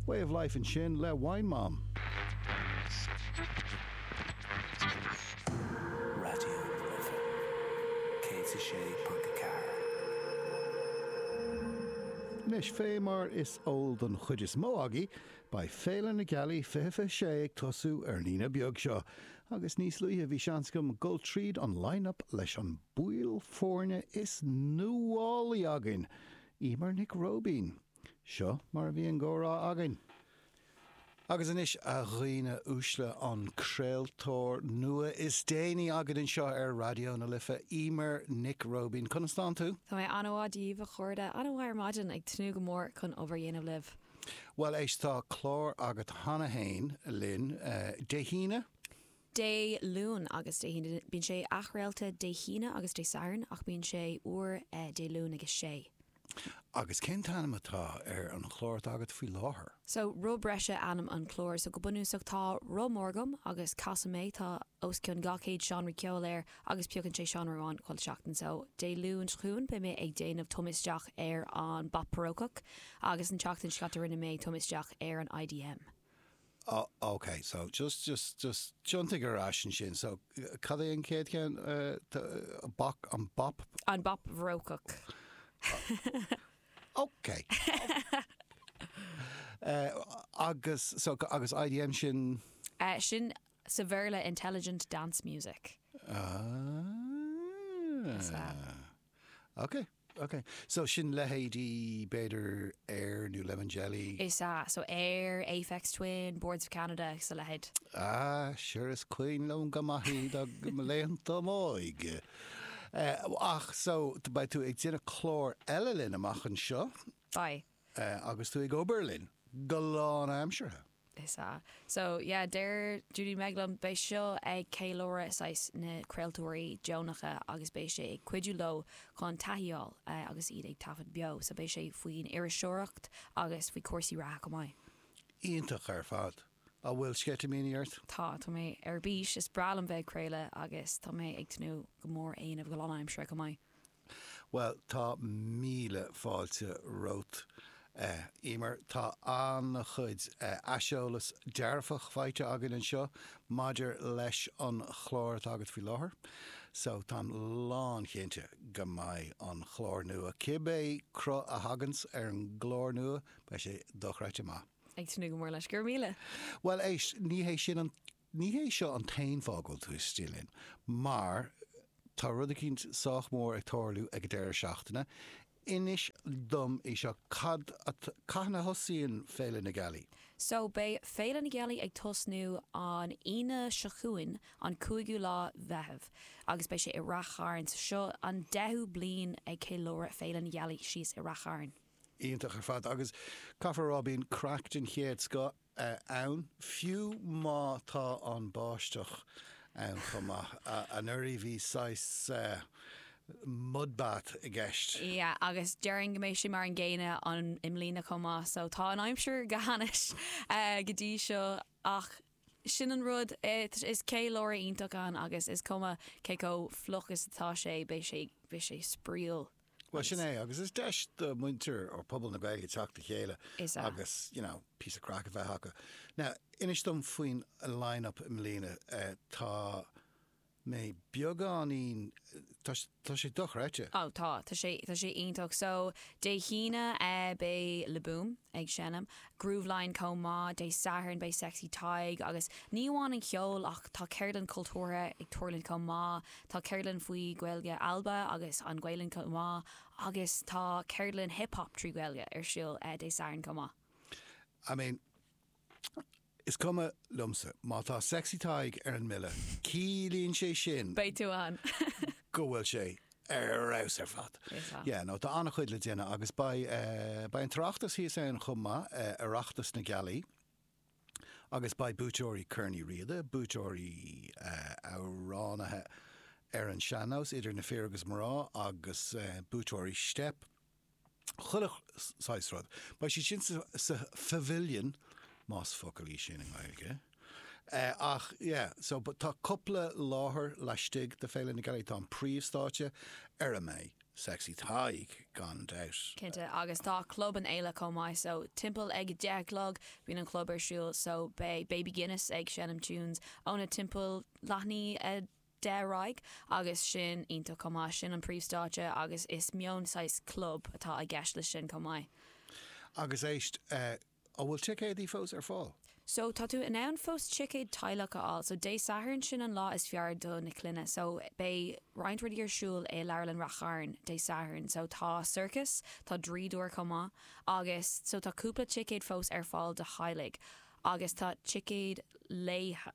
Way of Life ansin le Wine Mom. Anois, fé mar is eol don chuid is mó agaibh, beidh Féile na Gealaí 2026 ag tosú ar an Aoine beag seo, agus níos luaithe bhí seans agam dul tríd an line-up leis an mball foirne is nuálaí againn! Emer Nic Róibín, Seo mar a bhí an comhrá againn. Agus anois, a dhaoine uaisle, an craoltóir nua is déanaí againn anseo ar Raidió na Life, Emer Nic Róibín. Conas atá tú? Tá mé an-mhaith, Dia daoibh, a chairde. An-mhaith ar maidin, ag tnúth go mór chun obair a dhéanamh libh. Bhuel, éist, tá clár agat cheana féin linn Dé hAoine. Dé Luain agus Dé hAoine. Bíonn sé athchraolta Dé hAoine agus Dé Sathairn ach bíonn sé úr Dé Luain ag a sé. Agus cén t-ainm atá ar an chlár atá agat faoi láthair? So, Roth Breise ainm an chláir. So, go bunúsach tá roth mór agam agus casaim é, tá os cionn 200 seánra ceoil air agus piocann sé seánra amháin chuile sheachtain. So, Dé Luain seo chugainn beidh mé ag déanamh tumadh isteach ar an bpop barócach agus an tseachtain seo caite rinne mé tumadh isteach ar an IDM. Oh ok so just just just tiontaigh ar ais ansin so cad é an chéad cheann, an pop? An pop barócach. Ok agus so agus IDM sin? Eh sin sa Bhéarla intelligent dance music. Ah Is ea. Ok. Ok, so sin leithéidí, b'fhéidir, Air nó Lemon Jelly? Is ea, so Air, Aphex Twin, Boards of Canada agus a leithéid. Ah, sure, is cuimhin liom go maith iad ó laethanta m'óige. Eh, ach, so, beidh tú ag déanamh clár eile linn amach anseo? Beidh. Agus tú ag obair linn go lánaimseartha? Is ea. So, yeah, deir Judy Meg liom, beidh seo ag ceiliúradh saghas na craoltóirí deonacha agus beidh sé ag cuidiú leo chun taithí a fháil agus iad ag taifead beo. So beidh sé faoin iriseoireacht agus faoi cúrsaí reatha chomh maith. Iontach ar fad. An bhfuil sceitimíní ort? Tá, tá mé ar bís. Is breá liom bheith ag craoladh agus tá mé ag tnúth go mór é a dhéanamh go lánaimseartha chomh maith. Bhuel, tá míle fáilte romhat, a Emer. Tá an-chuid aiseolas dearfach faighte againn anseo maidir leis an chlár atá agat faoi láthair, so táim lánchinnte go mbeidh an clár nua, cibé cruth a thaganns ar an gclár nua, beidh sé dochreidte maith. Ag tnúth go mór leis. Go raibh míle. Bhuel, éist, ní hé sin an Ní hé seo an t-aon fáth go bhfuil tú istigh linn, mar tá rud eicínt sách mór ag tarlú ag an deireadh seachtaine. Inis dom é seo, cad atá, cathain a thosaíonn Féile na Gealaí? So, beidh Féile na Gealaí ag tosnú an Aoine seo chugainn, an cúigiú lá Mheitheamh, agus beidh sé i Rath Chairn. So seo an deichiú bliain ag ceiliúradh Féile na Gealaí síos i Rath Chairn. Iontach ar fad, agus caithfear a rá, bíonn craic den chéad scoth ann, fiú má tá an báisteach ann chomh maith. Anuraidh bhí saghas mud bath i gceist. Yeah, agus déarfainn go mbeidh sé mar an gcéanna an i mbliana chomh maith, so tá an aimsir go hainnis go dtí seo ach sin an rud, is ceiliúradh iontach é agus is cuma cé chomh fliuch is atá sé, beidh sé, beidh sé spraíúil. Bhuel sin é agus is deis do mhuintir or pobal na Gaeilge teacht le chéile agus you know píosa craic a bheith acu. Now inis dom faoin line up i mbliana. Tá mé beagáinín tá sé dochreidte. Ó tá, tá sé tá sé iontach. So Dé hAoine beidh Le Boom ag seinm, Grooveline chomh maith, Dé Sathairn beidh Sexy Tadhg agus ní amháin an cheol ach tá ceardlanna cultúrtha ag tarlúint chomh maith, Tá ceardlann faoi Ghaeilge Alba agus an Ghaelainn chomh maith agus tá ceardlann Hip Hop trí Ghaeilge ar siúl Dé Sathairn chomh maith. I mean, is cuma liomsa. Má tá Sexy Tadhg ar an mbille, ciallaíonn sé sin. Beidh tú ann. go bhfuil sé ar fheabhas ar fad. Is ea. Yeah, no, tá an-chuid le déanamh agus beidh, eh, beidh an tOireachtas thíos ann chomh maith, eh, Oireachtas na Gealaí. agus beidh buaiteoirí Chorn Uí Riada, buaiteoirí Amhránaithe ar an Sean-Nós, idir na fir agus mná, agus buaiteoirí Steip, chuile shaghas rud, beidh siad sin sa Phavilion, más focal í sin i nGaeilge, ach yeah, so but tá cupla láthair laistigh de Féile na Gealaí, tá an príomhstáitse ar a mbeidh. Sexy Tadhg gan dabht. Cinnte agus tá club an fhéile chomh maith so timpeall ag a deich a chlog bíonn an chlub ar siúl so beidh Baby Guinness ag seinm tunes óna timpeall leath i ndiaidh a deich ar aghaidh agus sin iontach chomh maith. Sin an príomhstáitse agus is mion saghas club atá i gceist leis sin chomh maith. Agus éist. An bhfuil ticéadaí fós ar fáil? So, tá tú in ann fós ticéad teaghlach a fháil. So, Dé Sathairn, sin an lá is fearr do na clainne. So, beidh roinnt rudaí ar siúl i Leabharlann Rath Chairn Dé Sathairn. So, tá sorcas, tá draíodóir chomh maith. Agus, so, tá cúpla ticéad fós ar fáil do theaghlaigh. Agus, tá ticéad laethe.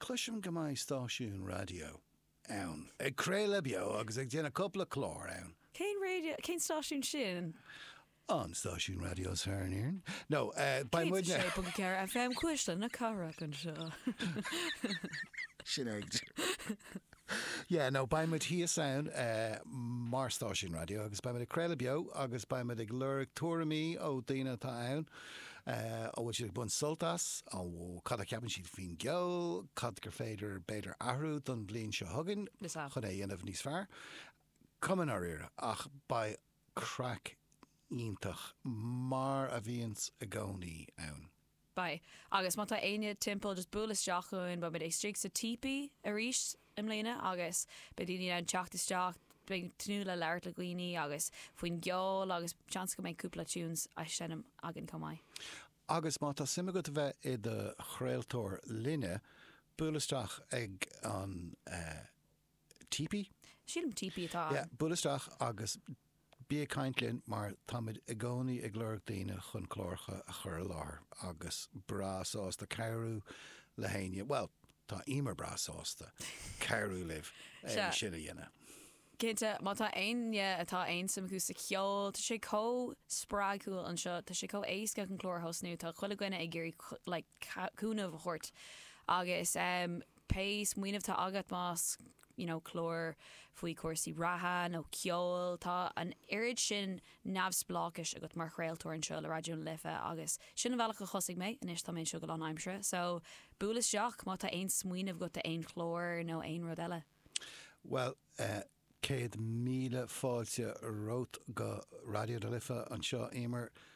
Cloisim go mbeidh stáisiún raidió ann ag craoladh beo agus ag déanamh cupla clár ann. Cén stáisiún raidió é sin? An stáisiún raidió is fearr in Éirinn. No, beidh muidne. 106.4 FM Cuisle na Cathrach anseo. Sin é. Yeah, no, beidh muid thíos ann mar stáisiún raidió agus beidh muid ag craoladh beo agus beidh muid ag lorg tuairimí ó daoine atá ann, an bhfuil siad ag baint sult as, cad a cheapann siad faoin gceol, cad gur féidir b'fhéidir athrú don bhliain seo chugainn chun é a dhéanamh níos fearr. Cuma i ndáiríre ach beidh craic iontach mar a bhíonns i gcónaí ann. Beidh. Agus má tá éinne timpeall just buail isteach chugainn. Beimid istigh sa típí arís i mbliana agus beidh daoine in ann teacht isteach. Beidh ag tnúth le labhairt le daoine agus faoin gceol agus seans go mbeidh cúpla tunes á seinm againn chomh maith. Agus má tá suim agat a bheith i do chraoltóir linne, buail isteach ag an. Típí? Típí, típí atá ann. Yeah, buail isteach agus bí ag caint linn mar táimid i gcónaí ag lorg daoine chun cláracha a chur i láthair agus breá sásta cabhrú le héinne, bhuel, tá Emer breá sásta cabhrú libh é sin a dhéanamh. Cinnte, má tá éinne atá aon suim acu sa cheol, tá sé chomh spreagúil anseo, tá sé chomh éasca chun clár a thosnú, tá chuile dhuine againne ag iarraidh like cúnamh a thabhairt agus eh, pé smaoineamh atá agat más you know clár faoi chúrsaí reatha nó ceol, tá an oiread sin neamhspleáchais agat mar chraoltóir anseo le Raidió na Life agus sin an bealach a thosaigh mé, anois tá mé anseo go lánaimseartha so buail isteach má tá aon smaoineamh agat do aon chlár nó aon rud eile. Bhuel eh céad míle fáilte romhat go Raidió na Life anseo Éimear,